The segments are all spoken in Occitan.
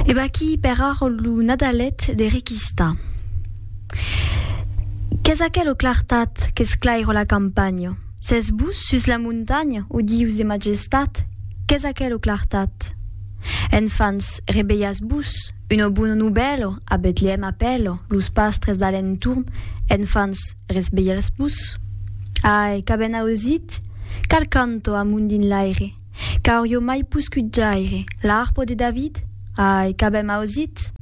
E vaquí per ara lo Nadalet de Requista. Qu'es aquelo clartat qu'esclaira la campanha? S'es vos sus la montanha, o Dius de majestat, qu'es aquelo clartat? Enfants, revelhatz-vos, una bona novèla a Betlèem apèla los pastres d'alentorn, enfants, resvelhatz-vos. Ai, qu'avèn ausit, qual canto amont dins l'aire! Qu'aurio mai poscut jaire l'arpo de David? Ai, qu'avèm ausit!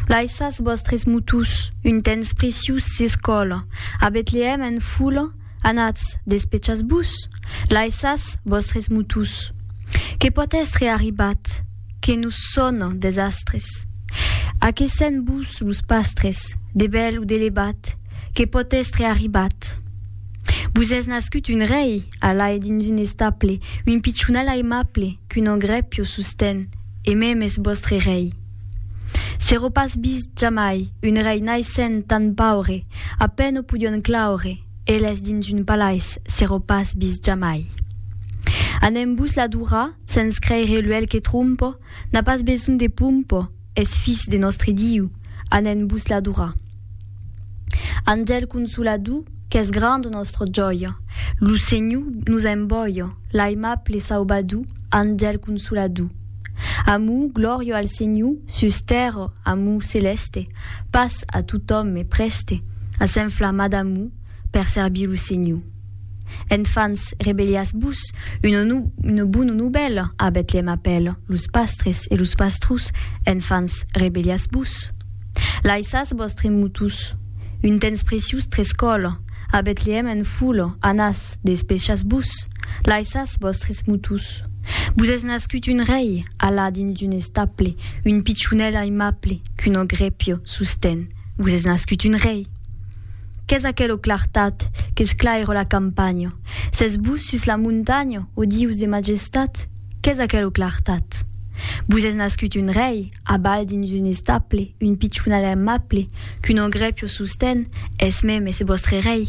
Laissatz vòstres motús, un tens precius s'escòla, a Betlèèm en fola, anatz, despechatz-vos! Laissatz vòstres motús! Que pòt èstre arribat? Que nos sòna desastres? Aquesèn-vos los pastres, de bèl o de levat, que pòt èstre arribat? Vos es nascut un rei! Alae dins un estaple, un pichonal aimable qu'un ogre pio sosten, e mem es vòstre rei. Sero pas vist jamai un rei naissent tan paure, a pen o podion claure, eles dins un palais sero pas vist jamai. Anem-vos l'adorar sens creire l'uèlh que trompo n'a pas besonh de pompo, Es Fis de nòstre Diu, anèn vos l'adorar. Angèl consolador, qu'es granda nòstra jòia, lo Senhor nos envòia, l'aimable Saubador, Angèl consolador. Amor, glòria al Senhor, sus tèrra, amor celèste, pas a totòme prèste, a s'enflamar d'amor per servir lo Senhor. Enfants, rebellatz-vos, una bona novèla a Betlèm apèla los pastres e los pastrus, Enfants, rebellatz-vos. Laissatz vòstre motús, un temps preciós trescòla, a Betlèm en fola, anatz, despechatz-vos, laissatz vòstres motús. Vos es nascut un rei, alà dins un estable, un pichonèl aimable, qu'un ogrèpio sostén. Vos es nascut un rei. Qu'es aquelo clartat qu'esclaire la campanha? S'es vos sus la montanha, o Dius de majestat? Qu'es aquelo clartat? Vos es nascut un rei, a bal dins un estaple, un pichonal aimable, qu'un ogre pio sosten, es meme, es vòstre rei.